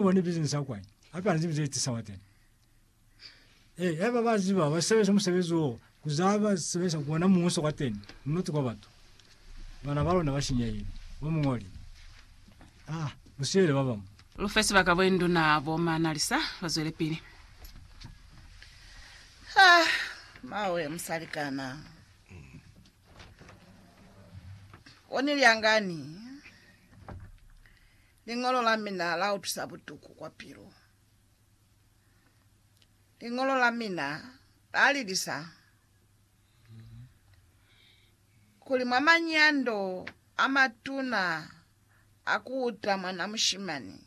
Ubone bizini sa kwani. Hape hana zibi zeti sawa tena. Eh, eba ba ziba ba sebeza musebezi wo kuzaba sebeza kuona muso kwa teni. Mnoti kwa batu. Bana ba lona ba shinyehile. Bo mungoli. Ah, usiyele ba bamwe. Lufe sibaka bo induna bo Manalisa bazwelepili. Ha, mawe musalikana. Oniliangani. Liñolo la mina la utwisa butuku kwa pilu. Liñolo la mina la lilisa kuli mwa manyando a matuna a ku uta mwana mushimani,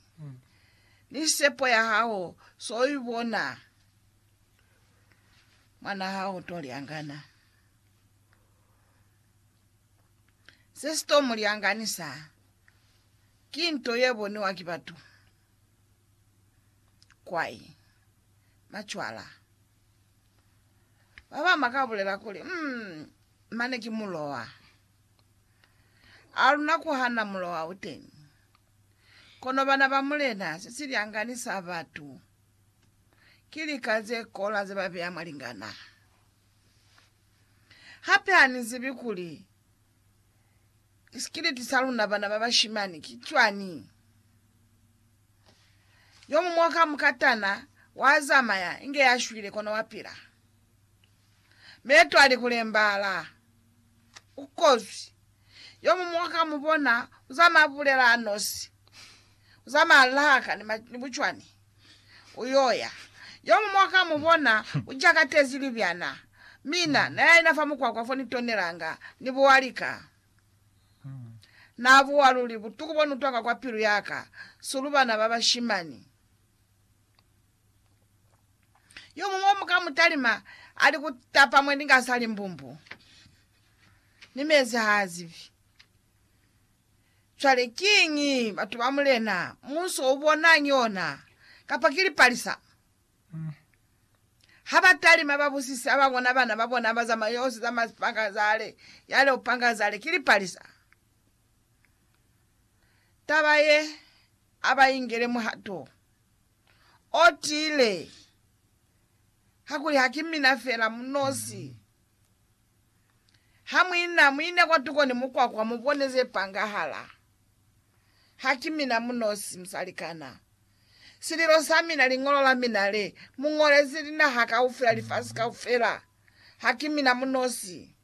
ni sepo ya hao so i bona mwana hao to lyangana. Se si to mu lyanganisa ki nto ye boniwa ki batu. Kwai. Macwala. Ba bama ka bulela kuli, mm, mane ki mulowa. A luna kuhana mulowa uteni. Kono bana ba Mulena se silyangani sa batu. Ki lika ze kola ze ba beya mwa lingana. Hape ha ni zibi kuli Isikiliti sa luna bana ba bashimani ki cwani? Yo muñwi wa ka mukatana wazamaya inge yashwile kono wapila. Meeto ali kulembaala. Ukozwi. Yo muñwi wa ka mubona uzama abulela anosi. Uzama alahaka ni, ma, ni bucwani. Uyoya. Yomuñwi wakamubona ujakatezi libyana. Mina, nayaina fa mukwakwa fo nitonelanga, nibuwa lika. Nabuwa luli butuku bonutwanga kwa pilu yaka, sulu bana babashimani. Yomuñwi omukamutalima ali kutapa mweninga asali mbumbu, ni mezi haazibi. Cwale kiñi batu ba Mulena Muso u bonang yona? Kapa ki lipalisa? Ha ba talima ba busise ha ba bona bana ba bona ba zamaya yosi za masipangazale, yale upangazale, ki lipalisa. Taba ye a ba ingele muhato o tiile, kakuli ha ki mina fela munosi. Ha muina, muina kwatuko ni mukwakwa, mubone ze pangahala. Ha ki mina munosi, musalikana. Sililo sa mina, liñolo la mina le mu ñolezi linaha kaufela, lifasi kaufela. Ha ki mina munosi.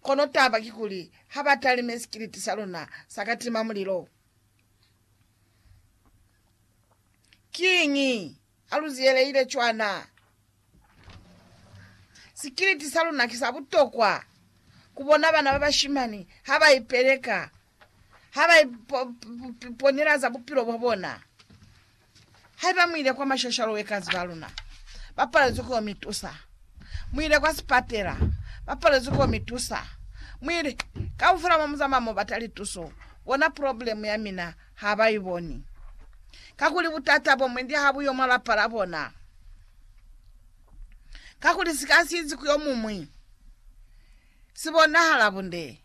Kono taba kikuli, ha ba talime sikiliti sa luna sa katima mulilo. Kiñi? Haluziyelehile cwana, sikiliti saluna ki sa butokwa kubona bana babashimani habaipeleka, habaiponela za bupilo bwabona. Haiba muile kwa mashashalo wekazi baluna bapalezwi kuyo mitusa, muile kwa sipatela bapalezwi kuyo mitusa, muile kaufela momuzamaya mobata lituso, bona pulobulemu yamina. ha ba i boni. Kakuli butata bo mwendi ha bu yo mwa lapa la bona. Kakuli si ka si izi ku yo mumwi, si bonahala bunde.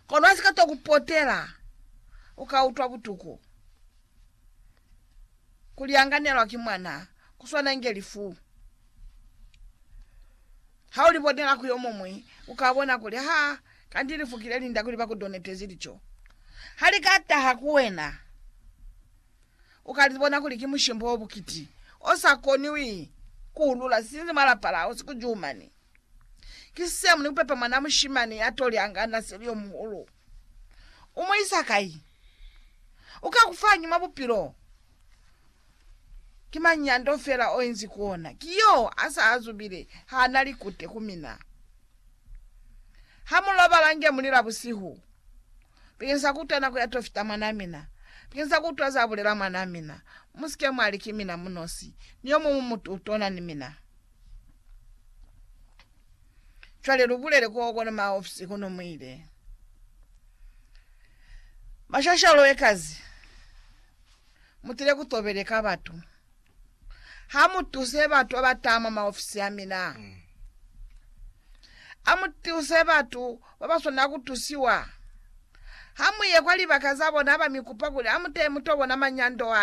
Kono si ka to ku potela, u ka utwa butuku. Ku lyanganelwa ki mwana ku swana inge lifu. Ha u li bonela ku yo mumwi, u ka bona kuli ha Kanti lifukile linda kuli bakudonetezi lico. Halikataha kuwena, ukalibona kuli ki mushimbo obukiti osakoniwi kuulula sinzi mwa lapa lao sikujumani. Ki same ni kupepa mwana mushimani yatoli anganda seli yomuhulu. Umuisa kai? Ukakufa hañi mwa bupilo? Ki mañi yando fela oinzi kuona? Ki yo asa azubile haana likute ku mina. Ha mulobala nge muli la busihu, bekenisa kuutwa nako ya tofita mwanaa mina, bekenisa kuutwa za bulela mwanaa mina, musike mwali ki mina munosi, ni yomuñwi mutu utona ni mina. Cwale lubulele ko kono maa ofisi kono muile. Mashashalo ekazi. mutile kutobeleka batu. Hamutuse batu abataa mwa maofisi amina. Amutuse batu babaswanela kutusiwa. Hamuye kwa libaka zabona abamikupa kuli amutee mutobona manyando aka.